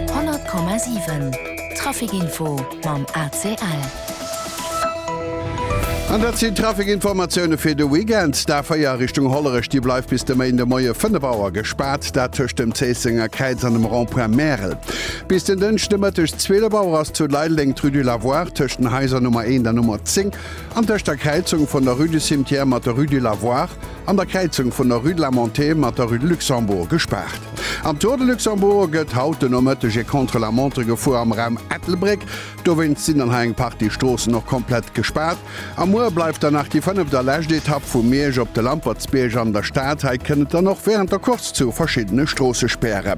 100,7 Trafic Info mam ACL. An dat sinn d'Trafic-Informatioune fir de Weekend. D'A4 Richtung Hollerech, déi bleift bis de Méinde Moie 5 Auer gespaart, dat tëscht dem Zéissenger Kräiz an dem Rond-point Märel. Bis den Dënschde Mëtteg 12 Auer ass zu Leideleng d'Rue du Lavoir tëscht den Haiser Nummer 1 an Nummer 10 an tëscht der Kräizung vun der Rue du Cimetière mat der Rue du Lavoir An der Kräizung vun der Rue de la Montée mat der Rue de Luxembourg gespaart. Am Tour de Luxembourg gëtt haut de Nomëtteg e Contre la Montre gefuer am Raum Ettelbréck. Dowéinst sinn dann hei eng Partie Stroossen och komplett gespaart. A muer bleift dann nach déi fënneft a lescht Etapp vu Miersch op de Lampertsbierg an der Stad. Hei kënnt et dann och wärend der Course zu verschiddene Stroossespäre.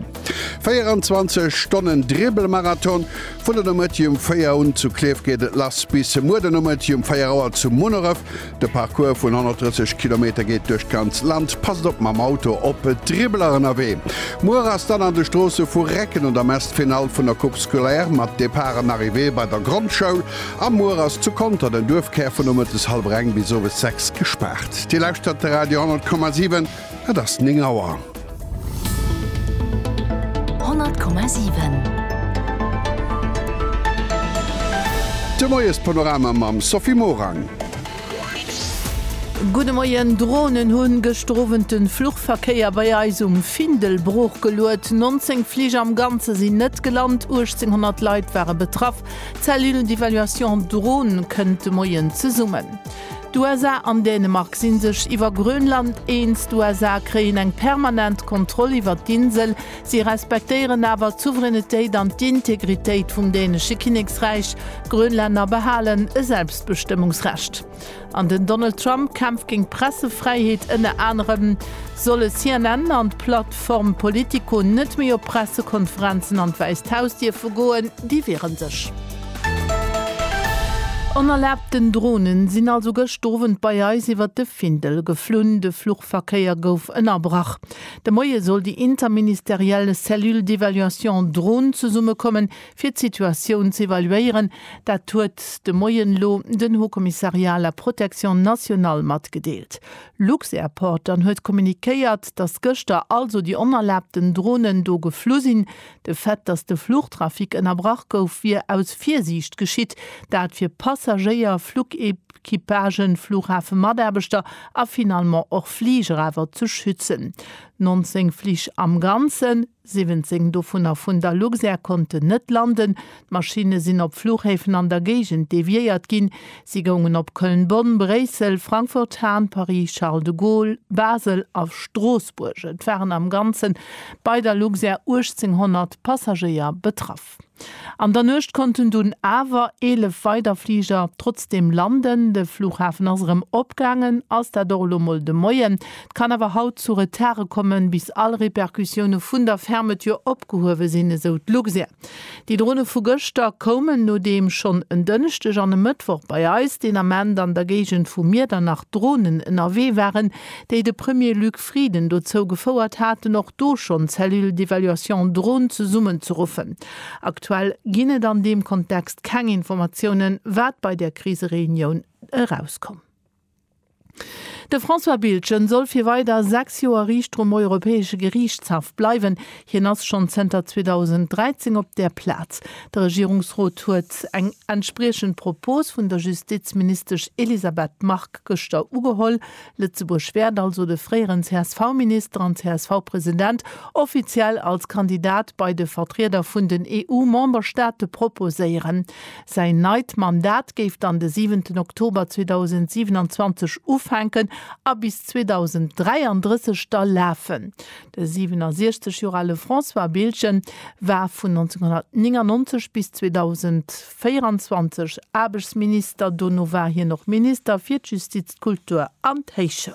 24 Stonnen Dribbelmarathon, Vun der Nomëtti um 4 un zu Klierf geet et lass bis muer de Nomëtti um 4 Auer zu Munneref. De Parcours vun 130 Kilometer geet duerch d'ganz Land. Passt op mam Auto op d'Dribbeler ënnerwee. Muer ass dann an de Stroosse vu Recken un der Mess d'Finall vun der Coupe Scolaire mat Départ an Arrivée bei der Grondschoul. A muer ass zu Conter den Duerfkär vun nomëttes hallwer eng bis owes sechs gespaart. Dir lauschtert de Radio 100,7. Et ass 9 Auer. 100,7. De Moiespanorama mam Sophie Morang. Gudde Moien, Dronen hunn gëschter Owend de Fluchverkéier bei eis um Findel broochgeluet. 19 Fliger am Ganze sinn net gelant, 1.800 Leit ware betraff. D'Cellule d'évaluation Drone kënnt de Moien zesummen. D'USA an Dänemark si sech iwwer Grönland eens. D'USA kréien eng permanent Kontroll iwwer d'Insel. Si respektéieren awer d'Souveränitéit an d'Integritéit vum dänesche Kinneksräich. D'Grönlänner behalen e Selbstbestëmmungsrecht. An den Donald Trump kämpft géint d'Pressefräiheet. Ënner anerem solle CNN an d'Plattform Politico net méi op Pressekonferenzen an d'Wäisst Haus dierfe goen. Déi wiere sech. Onerlaabten Dronen sinn also gëscht Owend bei eis iwwert de Findel geflunn. De Fluchverkéier gouf ënnerbrach. De Moie soll déi interministeriell Cellule d'évaluation drone zesummekommen, fir d'Situatioun ze evaluéieren. Dat huet de Moien elo den Haut Commissariat à la protection nationale matgedeelt. Lux-Airport dann huet kommuniquéiert, datt gëschter also déi onerlaabten Dronen do geflu sinn, De Fait, datt de Fluchtrafic ënnerbrach gouf, wier aus Virsiicht geschitt, dat fir Passagéier, Flugequipagen, Flughafemataarbechter a finalement och Fliger awer ze schützen. 19 Flich am Ganzen, 17 dovunner vun der Luxair, konnten net landen, D'Maschinne sinn op Fluchhäfen an der Géigend deviéiert ginn. Si goungen op Köln-Bonn, Bréissel, Frankfurt-Hahn, Paris-Charles de Gaulle, Basel a Stroossbuerg. Et waren am Ganze bei der Luxair 1.800 Passagéier betraff. An der Nuecht konnten dunn awer 11 weider Fliger trotzdeem landen. De Fluchhafen ass erëm opgaangen, ass dat och elo mol de Moien. Et kann awer haut zu Retardë kommen, bis all Repercussioune vun der Fermeture opgehuewe sinn, esou d'Luxair. Déi Drone vu gëschter koumen, nodeem schonn en Dënschdeg an e Mëttwoch bei eis deen Ament an der Géigend vu Miedernach Dronen ënnerwee waren, déi de Premier Luc Frieden dozou gefouert haten, och do schonn d'Cellule d'évaluation drone zesummenzeruffen. Aktuell ginn et an deem Kontext keng Informatiounen, wat bei där Krisereunioun erauskoum. De François Biltgen soll fir weider 6 Joer Riichter um Europäesche Geriichtshaff bleiwen. Hien ass schonn zënter 2013 op där Plaz. De Regierungsrot huet eng entspriechend Propos vun der Justizministesch Elisabeth Margue gëschter ugeholl. Lëtzebuerg wäert also de fréieren CSV-Minister an CSV-President offiziell als Kandidat bei de Vertrieder vun den EU-Memberstaate proposéieren. Säin neit Mandat géif dann de siwenten Oktober 2027 ufänken a bis 2033 da lafen. De 67 Joer ale François Biltgen war vun 1999 bis 2024 Aarbechtsminister. Dono war hien och Minister fir d'Justiz, d'Kultur an d'Héichschoul.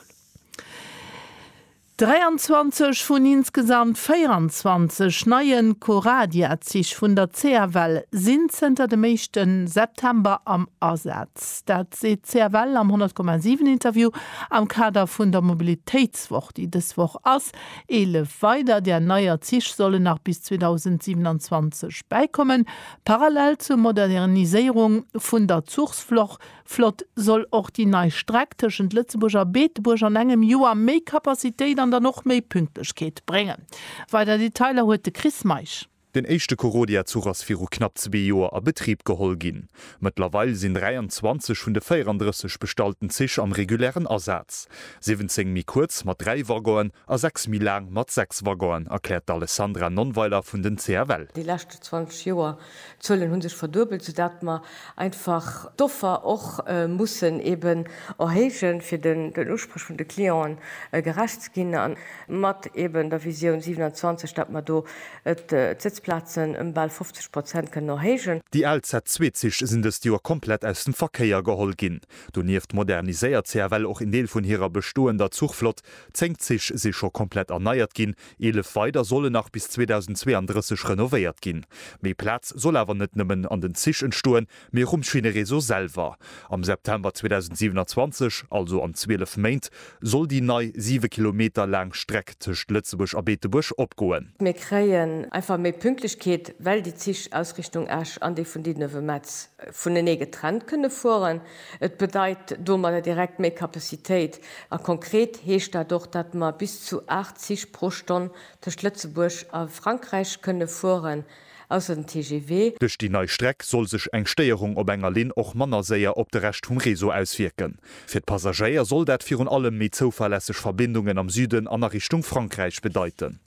23 vun insgesamt 24 neie Coradia-Zich vun der CFL sinn zënter dem éischte September am Asaz. Dat seet d'CFL am 100,7 Interview am Kader vun der Mobilitéitswoch, déi dës Woch ass. Eelef weider där neier Zich sollen nach bis 2027 bäikommen. Parallel zur Moderniséierung vun der Zuchsfloch Flott soll och déi nei Streck tëschent Lëtzebuerg a Beetebuerg an engem Joer méi Kapazitéit an dann och méi Pünktlechkeet bréngen. Weider Detailer huet de Chris Meisch. Den éischte Corodia-Zuch ass viru knapp zwee Joer a Betrib geholl ginn. Mëttlerweil sinn 23 vun de 34 bestallten Zich am regulären Asaz. 17 méi kuerz mat dräi Waggonen a sechs méi laang mat sechs Waggonen, erkläert d'Alessandra Nonnweiler vun den CFL. Déi leschte 20 Joer D'Zuelen hu sech verduebelt, soudatt mer einfach d'Offer och mussen eeben erhéijen, fir den Usprech vun de Clienten gerecht ze ginn, a mat eeben der Visioun 27, datt mer do d'Sëtzplazen ëm bal 50 Prozent kënnen erhéijen. Déi al Z2-Zich sinn dëst Joer komplett aus dem Verkéier geholl ginn. Donieft moderniséiert CFL och een Deel vun hirer bestoender Zuchflott. Zéng Zich si scho komplett erneiert ginn, Eelef weider solle nach bis 2032 renovéiert ginn. Méi Plaz soll awer net nëmmen an den Zich entstoen, mee och um Schinnereseau selwer. Am September 2027, also an 12 Méint, soll déi nei 7 Kilometer laang Streck tëscht Lëtzebuerg a Beetebuerg opgoen. Mir kréien einfach méi Pünktlechkeet, well déi Zich aus Richtung Esch an déi vun Diddeln-Wemmetz vunenee getrennt kënne fueren. Et bedeit domadder direkt méi Capacitéit a konkret heescht dat och, datt mer bis zu 8 Zich pro Stonn tëscht Lëtzebuerg a Frankräich kënne fueren, ausser den TGV. Duerch déi nei Streck soll sech eng Stéierung op enger Linn och manner séier op de Rescht vum Réseau auswierken. Fir d'Passagéier soll dat virun allem méi zouverlässeg Verbindungen am Süden an a Richtung Frankräich bedeiten.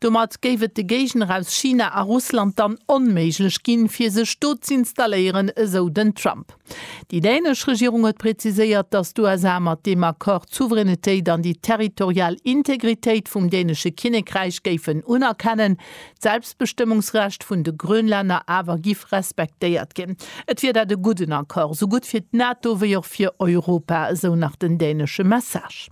Domat géif et de Géigner aus China a Russland dann onméiglech ginn, fir sech do z'installéieren, esou den Trump. Déi dänesch Regierung huet präziséiert, datt d'USA mat deem Accord d'Souveränitéit an déi territorial Integritéit vum dänesche Kinnekräich géifen unerkennen, d'Selbstbestëmmungsrecht vun de Grönlänner awer giff respektéiert ginn. Et wier dat e gudden Accord, esou gutt fir d'NATO wéi och fir Europa, esou nach den dänesche Message.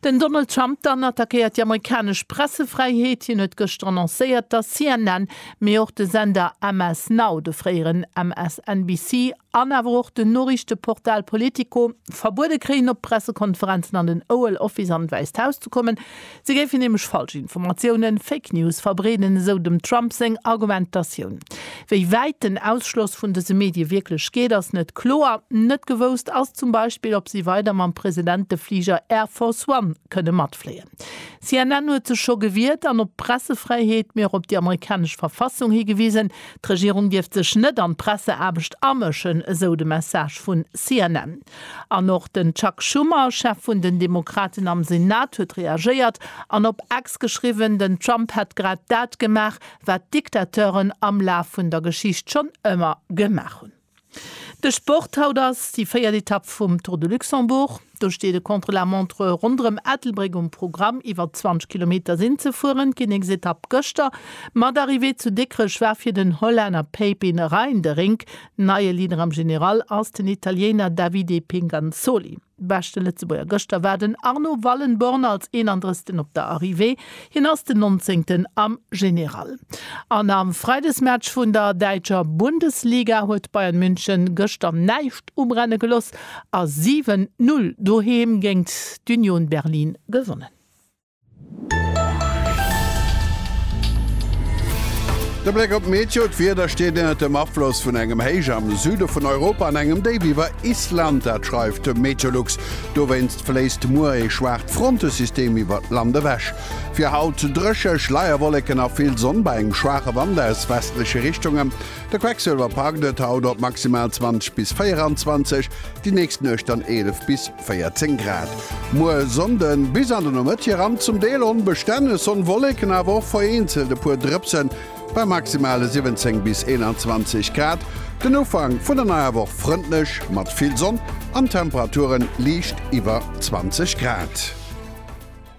Den Donald Trump dann attackéiert déi amerikanesch Pressefräiheet. Hien huet gëschter annoncéiert, datt CNN, mee och de Sender MS Now, de fréieren MSNBC, an awer och den Noriichteportal Politico verbuede kréien, op Pressekonferenzen an den Oval Office an d'Wäisst Haus ze kommen. Si géifen nämlech falsch Informatiounen, Fake News, verbreeden, esou dem Trump seng Argumentatioun. Wéi wäit den Ausschloss vun dëse Medie wierklech geet, ass net kloer. Net gewousst ass zum Beispill, ob si weider mam Presidentefliger Air Force One kënne matfléien. CNN huet sech scho gewiert an op d'Pressefräiheet, mee och op déi amerikanesch Verfassung higewisen. D'Regierung dierft sech net an d'Presseaarbecht amëschen, esou de Message vun CNN. An och den Chuck Schumer, Chef vun den Demokraten am Senat, huet reagéiert an op X geschriwwen, den Trump hätt grad dat gemaach, wat d'Diktateuren am Laf vun der Geschicht schonn ëmmer gemaach hunn. De Sport, Haut ass déi véiert Etapp vum Tour de Luxembourg. Do steet e Contre-la-montre ronderëm Ettelbréck um Programm. Iwwer 20 Kilometer sinn ze fueren. D'Kinneksetapp gëschter mat Arrivée zu Dikrech war fir den Hollänner Pepin Reijnderink. Neie Leader am General ass den Italiener Davide Pinganzoli. Beschte Lëtzebuerger gëschter war den Arno Wallenborn als 31 op der Arrivée. Hien ass den 19 am General. An am Freidesmatch vun der däitscher Bundesliga huet Bayern München gëschter näischt ubrenne geloss a 7, 0 doheem géingt d'Union Berlin gewonnen. De Bléck op d'Meteo, D'Wieder steet ënnert dem Afloss vun engem Héich am Süde vun Europa an engem Déif iwwer Island, dat schreift de Meteolux. Dowéinst fléisst muer ee schwaacht Frontesystem iwwert d'Land ewech. Fir haut dréche, Schleierwolleken a vill Sonn bei engem schwaache Wand aus westleche Richtungen. De Quecksëlwer packt et haut op maximal 20 bis 24, déi nächst Nuecht dann 11 bis. 14 Grad. Muer Sonnde bis an de Nomëtt hiran zum Deel onbestänne Sonn-Wolleken, awer och vereenzelt e puer Drëpsen bei maximale 17 bis 21 Grad. Den Ufank vun der neier Woch frëndlech mat vill Sonn an Temperature liicht iwwer 20 Grad.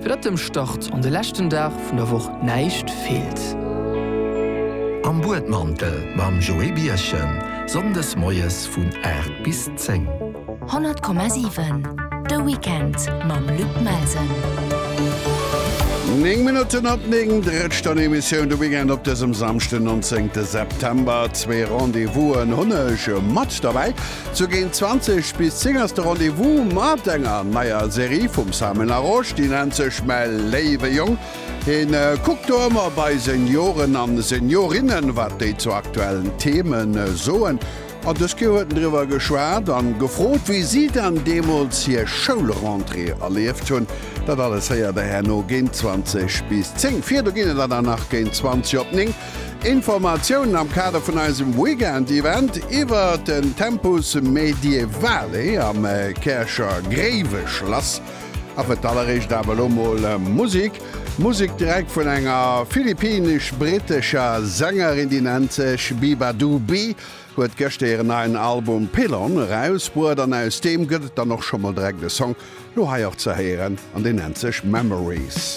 Fir datt dem Start an de leschten Dag vun der Woch näischt feelt. Am Buedmantel mam Joé Birchen, Sonndes moies vun 8 bis 10. 100,7 De Weekend mam Luc Melsen. Néng Minutten op néng, Drëtsch dann Emissioun de Weekend op dësem Samschden 19 de September. Zwee Rendez-vousen hunn ech mat derbäi, Zu géint 20 bis 10 ass de Rendez-vous mat enger neier Serie vum Simon Larosche, déi nennt sech Mäi léiwe Jong. Hien kuckt do ëmmer bei Senioren an Seniorinnen, wat déi zu aktuellen Themen soen. An dës Kéier huet en driwwer geschwat an gefrot, wéi si dann deemools hir Schoulrentrée erlieft hunn. Dat alles héiert der herno géint 20 bis 10. Virdu ginn et der dann nach géint 20 op 9. Informatiounen am Kader vun eisem Weekend-Event iwwer den Tempus Medievale am Käercher Gréiweschlass. A fir d'alleréischt awer elo mol Musek. Musek direkt vun enger philippinesch-brittescher Sängerin, déi nennt sech Biba Dooby, huet gëschter hiren neien Album Pylon erausbruet an aus deem gëtt et dann och scho mol direkt e Song, lo hei och ze héieren, an deen nennt sech Memories.